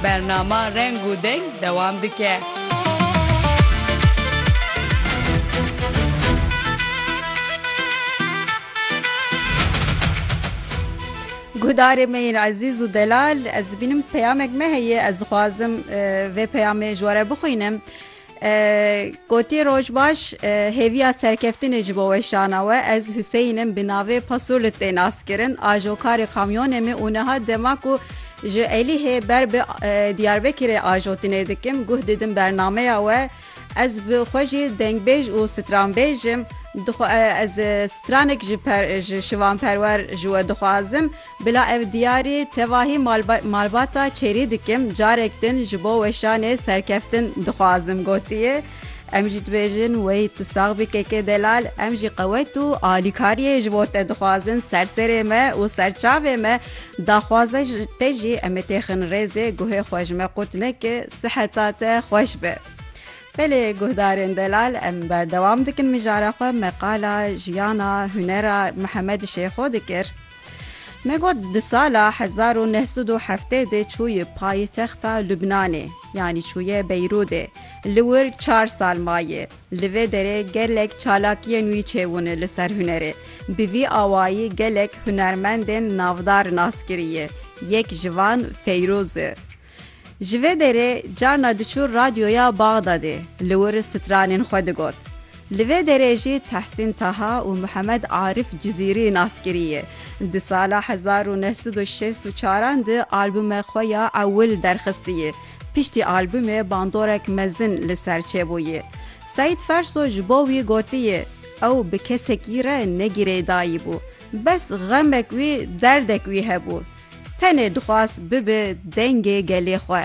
Bernama Reng û Deng dewam dike. Guhdarê me yên ezîz û delal ez dibînim peyamek me heye ez dixwazim vê peyamê ji we re bixwînim. Gotiye roj baş hêviya serkeftinê ji bo weşana we ez Huseyîn im bi navê Pasulit tê naskirin ajokarê kamyonê me û niha dema ku ji Elîhê ber bi Diyarbekirê ajotinê dikim guh didim bernameya we ez bi xwe jî dengbêj û stranbêj im dixwe ez stranek ji şivanperwer ji we dixwazim Bila ev diyarî tevahî malbata çêrî dikim, carek din ji bo weşanê serkeftin dixwazim gotiye, Em jî dibêjin wey tu sax bî KK Delal, em jî qewet û alîkariyê ji bo te dixwazin, serserê me û serçavê me, daxwaza te jî em ê têxin rêzê, guhê xwe ji me qut neke, siheta te xweş be. Belê guhdarên Delal em berdewam dikin mijara xwe, me qala jiyana hunera Mihemed Şêxo dikir. Me got di sala hezar û neh sed û heftê de çûye payitexta Lubnanê yanî çûye Beyrûdê. Li wir çar sal maye. Li vê derê gelek çalakiyên wî çêbûne li ser hunerê. Bi vî awayî gelek hunermendên navdar nas kiriye. Yek ji van Feyrûz e. Ji vê derê carna diçû radyoya Baxdadê li wir stranên xwe digot. Li vê derê jî Tehsîn Taha û Muhemed Arif Cizîrî nas kiriye. Di sala hezar û neh sed û şêst û çaran de albûme xwe ya ewil derxistiye. Piştî albûmê bandorek mezin li ser çêbûye. Seîd Ferso ji bo wî gotiye ew bi kesekî re ne girêdayî bû. Bes xemek wî derdek wî hebû. Tenê dixwast bibe dengê gelê xwe.